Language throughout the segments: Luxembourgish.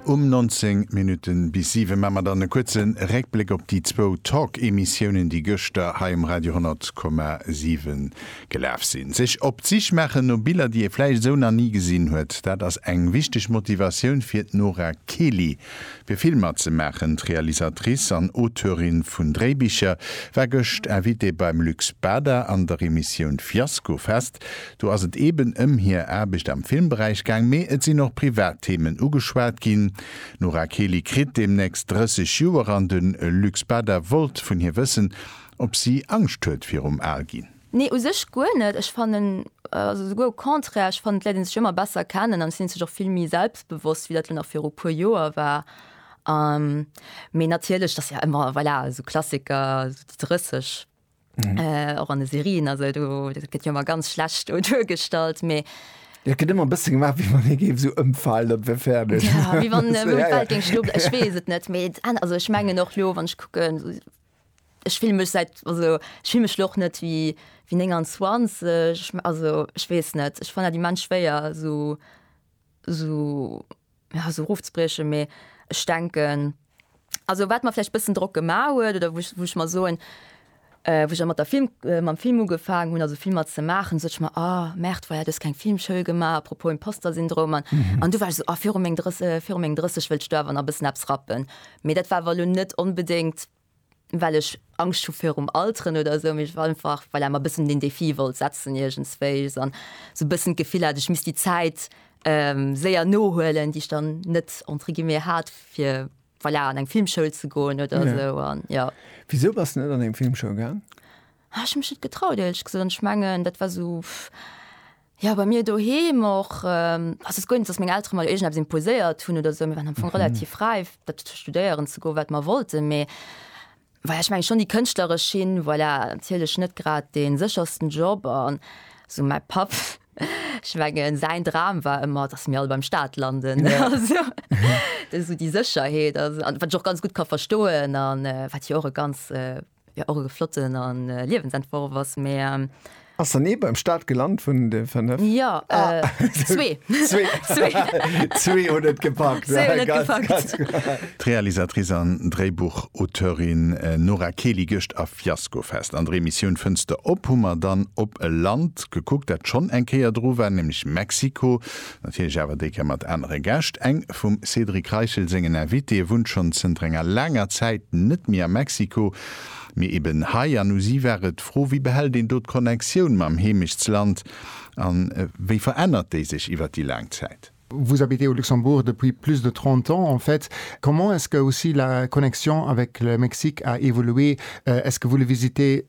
Um 19 Minutten bis 7 maa mer dann e kuerze Réckbléck op déi zwou Talk-Emissiounen, déi gëschter hei um Radio 100,7 gelaf sinn. Sech op d'Sich maachen no Biller, déi ee vläicht esou nach ni gesinn huet, dat ass eng wichteg Motivatioun fir d'Nora Kely, fir Filmer ze maachen. D'Realisatrice an Auteurin vun Dréibicher war gëscht Invitée beim Lux Bada an der Emissioun Fiasko Fest. Do ass et eeben ëm hir Aarbecht am Filmberäich gaang, mee et sinn och privat Themen ugeschwat ginn. D'Nora Kely kritt deemnächst 30 Joer an de Luc Spada wollt vun hir wëssen, ob si Angscht huet virum Alginn. Nee, u sech guer net. Ech fannen, also souguer au contraire, ech fannen d'Leit een sech ëmmer besser kennen an et sinn een sech och vill méi selbstbewosst, wéi dat elo nach viru puer Joer war. Mee natierlech, et ass jo ëmmer, voilà, esou Klassiker, esou déi 30. Mhm. Äh, och an de Serien also do gëtt jo mar ganz schlecht o duergestallt méi. Ja, gëtt ëmmer bësse gemaach, wie man e géif so ëmfalen, dat wär fäerdeg. Ja, wie wann äh, ja, ja. ging schlupp ech wees et net méi also ech mengen och lo wann ich kucken so, ich film mech seit also ich film mech loch net wie wie 29 also ich wees net ich fan die man schwéier so so ja, sou erofzebriechen, mee ech denken, also wat mer vläicht e bëssen Drock gemaach huet oder wou ech, wou ech mer soen, wou ech mat der Film, mam Film ugefaangen hunn, also Filmer ze maachen, sot ech mer, ah merde, voilà, du hues keng Filmschoul gemaach, à propos Imposter-Syndrom an, an du war ech esou, ah viru meng 30, viru meng 30 wëllt ech do awer nach e bëssen eppes rappen. Mee dat war awer elo net onbedéngt well ech Angscht hu virum Alteren oder esou, mee ech war einfach voilà mer e bëssen den Défi wollt setzen iergendswéi an esou e bëssen d'Gefill hat, ech misst déi Zäit séier nohuelen, déi ech dann net entre guillemets hat, fir voilà an eng Filmschoul ze goen oder esou an jo. Wisou bass de net an eng Filmschoul gaang? Ech hu mech net getraut, éierlech gesot, an ech mengen dat war esou, Jo, bei mir doheem och. Also et ass guer net, datt meng Eltere mer iergendeppes imposéiert hunn oder esou. Mir waren am Fong relativ räif, dat studéieren ze goen, wat mer wollten. Mee voilà, ech mengen schonn déi kënschtleresch Schinn, voilà, natierlech net grad dee séchersten Job. An esou mäi Papp, ech mengen säin Dram war ëmmer, datt mir all beim Staat landen. Also esou déi Sécherheet, wat ech och ganz gutt ka verstoen an wat jo och e ganz, Jo och e flotten a Liewensentworf ass mä. Ass dann ee beim Start gelant vun de 5? Jo, zwee. Zwee hunn et gepackt. D'Realisatrice an Dréibuchauteurinn Nora Keli Gëscht a Fiaskofest. An der Emissioun Fënster op hu mer dann op e Land gekuckt, dat schonn eng Kéier dru war, nämlech Mexiko. Natierlech awer déi Kéier mat anere Gäscht. Eng vum Cédric Reichel sengen Invitéeë wunnt schonn zënter enger laanger Zäit net méi a Mexiko, mee eben hei. An u si war et d'Fro, Wéi behält een do d'Connectioun mam Heemechtsland a wéi verännert déi sech iwwer déi laang Zäit? Vous habitez au Luxembourg depuis plus de 30 ans, en fait, comment est-ce qu'aussi la connexion avec le Mexique a évolué? Est-ce que vous le visitez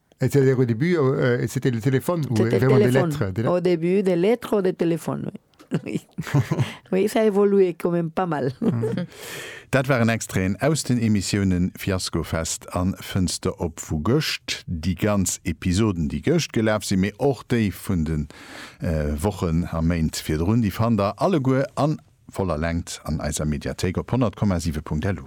Et se dire au début, et c'était le téléphone ou vraiment des lettres? Au début des lettres ou des téléphones, oui. Oui, oui, ça a évolué quand même pas mal. Dat waren Extraiten aus den Emissiounen Fiaskofest an Fënster op vu gëscht. Déi ganz Episoden, déi gëscht gelaf sinn, mee och déi vun de Wochen a Méint virdrun, déi fannt der alleguer a voller Längt an eiser Mediathéik op 100,7.lu.